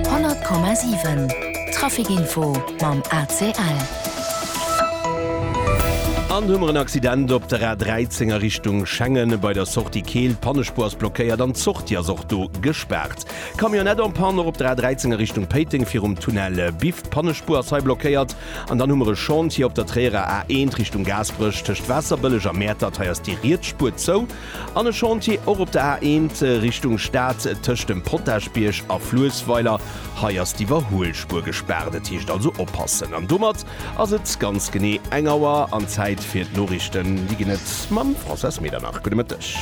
100,7 Trafikinfo mam ACL. An hu mer en Accident op der A 13 a Richtung Schengen bei der Sortie Keel. Pannespuer ass blockéiert an d'Sortie ass och do gespaart. Camionnette en panne och op der A 13 a Richtung Péiteng virum Tunnel Biff. D'Pannespuer ass hei blockéiert. An dann hu mer e Chantier op der Tréierer A1 Richtung Gaasperech tëscht Waasserbëlleg a Mäertert, hei ass déi riets Spuer zou. An e Chantier och op der A1 Richtung Stad tëscht dem Potagebierg a Fluessweiler, hei ass d'Iwwerhuelspuer gespaart. Et heescht also oppassen. An domat ass et ganz genee eng Auer an Zäit fir d'Noriichten. Déi ginn et mam Françoise Medernach. Gudde Mëtteg.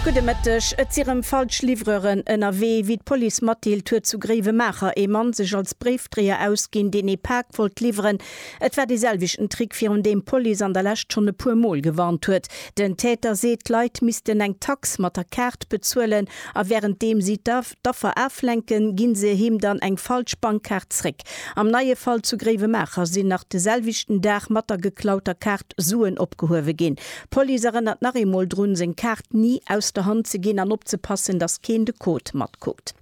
Gudde Mëtteg. Et si rëm falsch Livreuren ënnerwee. Wéi d'Police matdeelt, huet zu Gréiwemaacher ee Mann sech als Bréif. Dreeër ausginn, deen ee Pak wollt liwweren. Et war dee selwechten Trick, virun deem d'Police an der Lescht schonn e puer Mol gewarnt huet. Den Täter seet, d'Leit missten eng Tax mat der Kaart bezuelen a wärenddeem si d'Affer aflenken, ginn se him dann eng falsch Bankkaart zréck. Am neie Fall zu Gréiwemaacher sinn nach de selwechten Dag mat der geklauter Kaart Suen opgehuewe ginn. D'Police erënnert nach eemol drun, seng Kaart ni aus der Hand ze ginn an opzepassen, dass keen de Code matkuckt.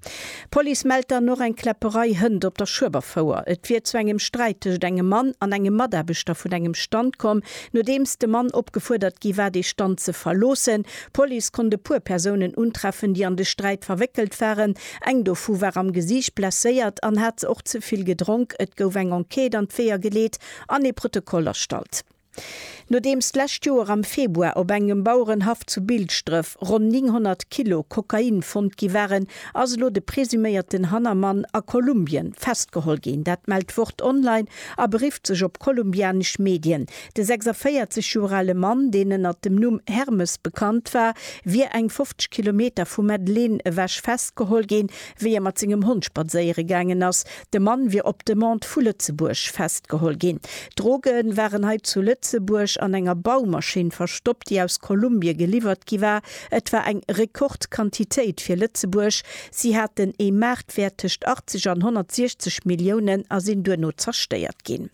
D'Police mellt dann och eng Kläpperei Hënt op der Schueberfouer. Et wier zu engem Sträit tëschent engem Mann an engem Mataarbechter vun engem Stand komm. Nodeems de Mann opgefuerdert gi war, de Stand ze verloossen. D'Police konnt e puer Persounen untreffen, déi an de Sträit verwéckelt waren. Eng dovu war am Gesiicht blesséiert an hat och ze vill gedronk. Et gouf eng Enquête an d'Weeër geleet an ee Protokoll erstallt. Nodeems d'lescht Joer am Februar op engem Bauerenhaff zu Bilschdref ronn 900 Kilo Kokain fonnt gi waren, ass elo de presuméierten Hannermann a Kolumbien festgeholl ginn. Dat mellt d'Wort Online a berifft sech op kolumbianesch Medien. De 46 Joer ale Mann, deen ënner dem Numm Hermes bekannt war, wier eng 50 Kilometer vu Medellín ewech festgeholl ginn. wéi e mat sengem Hond spadséiere gaangen ass. De Mann wier op Demande vu Lëtzebuerg festgeholl ginn. D'Droge waren hei zu Lëtzebuerg an enger Baumaschinn verstoppt, déi aus Kolumbie geliwwert gi war. Et war eng Rekordquantitéit fir Lëtzebuerg. Si haten ee Maartwäert tëscht 80 an 160 Milliounen a sinn duerno zerstéiert ginn.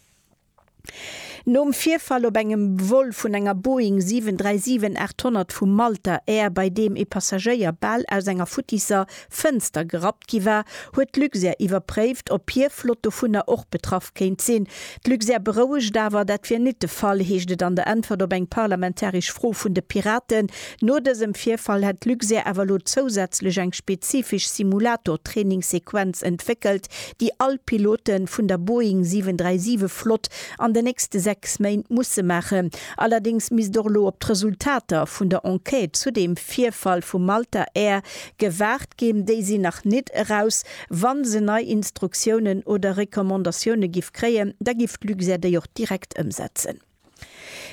Nom Virfall op engem Vol vun enger Boeing 737-800 vu Malta Air, bei deem ee Passagéier bal aus enger futtisser Fënster gerappt gi war, huet d'Luxair iwwerpréift, ob hir Flott dovunner och betraff kéint sinn. D'Luxair berouegt awer, dat wier nit de Fall, heescht et an der Äntwert op eng parlamentaresch Fro vun de Piraten. No dësem Virfall hätt d'Luxair awer elo zousätzlech eng spezifesch Simulator-Trainingsequenz entwéckelt, déi all Pilote vun der Boeing 737 Flott an de nächste 6 Méint musse maachen. Allerdéngs misst och elo op d'Resultater vun der Enquête zu deem Virfall vu Malta Air gewaart ginn. Déi sinn nach nit eraus. Wa se nei Instruktiounen oder Recommandatioune giff kréien, da giff d'Luxair déi och direkt ëmsetzen.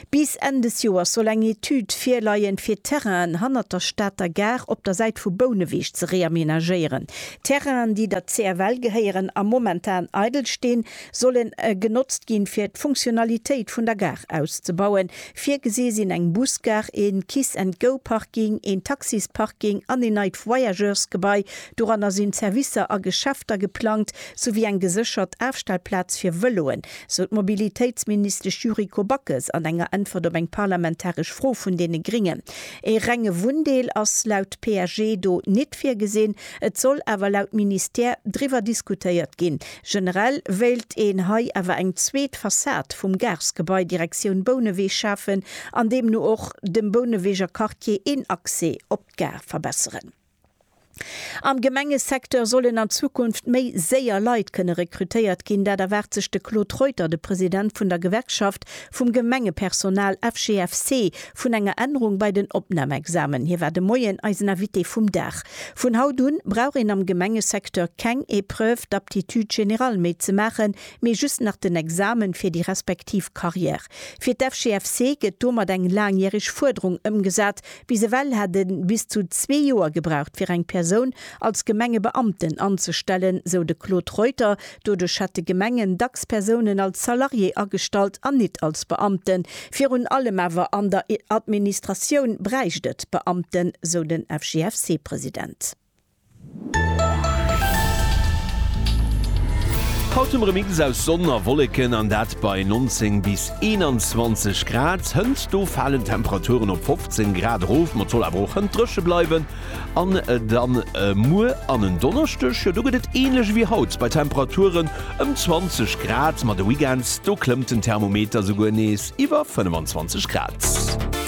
Bis Enn des Joers soll eng Etüd virleien, fir d'Terrainen hannert der Stater Gare op der Säit vu Bouneweg ze reamenagéieren. D'Terrainen, déi der CFL gehéieren a momentan eidel stinn, sollen genotzt ginn, fir d'Funktionalitéit vun der Gare auszebauen. Virgesi sinn eng Busgare, ee Kiss-and-Go-Parking, een Taxisparking an een neit Voyageursgebai. Doranner sinn Servicer a Geschäfter geplangt, souwéi eng geséchert Afstellplaz fir Vëloen. sou d'Mobilitéitsministesch Yuriko Backes an enger Äntwert op eng parlamentaresch Fro vun deene Gringen. Ee renge Wunndeel ass laut PSG do nit virgesinn, et soll awer laut Ministère driwwer diskutéiert ginn. Generell wéilt een hei awer eng zweet Fassad vum Garesgebai Direktioun Bouneweg schafen an deemno och dem Bouneweger Quartier een Accès op d'Gare verbesseren. Am Gemengesecteur sollen an Zukunft méi séier Leit kënne rekrutéiert ginn, dat erwaart sech de Claude Reuter, de President vun der Gewerkschaft vum Gemengepersonal, FGFC, vun enger Ännerung bei den Opnamexamen. Hie war de Moien eisen Invité vum Dag. Vun haut un brauch een am Gemengesecteur keng Épreuve d'aptitude générale méi ze maachen, mee just nach den Examen fir déi respektiv Carrière. Fir d'FGFC gëtt domat eng laangjäreg Fuerderung ëmgesat, Bis ewell hätt e bis zu zwee Joer gebraucht, fir eng Persoun als Gemengebeamten anzestellen, sou de Claude Reuter. Doduerch hätte Gemengen dacks Persounen als Salarié agestallt an nit als Beamten. Virun allem awer an der Administratioun bräicht et Beamten, sou den FGFC-President. Haut hu mer e Mix aus Sonn a Wolleken, an dat bei 19 bis 21 Grad. Hënt do falen d'Temperaturen op 15 Grad erof, ma et soll awer och hënt dréche bleiwen. An dann muer an en Donneschdeg, jo do gëtt et änlech ewéi haut bei Temperaturen ëm 20 Grad, ma de Weekend do klëmmt den Thermometer souguer nees iwwer 25 Grad.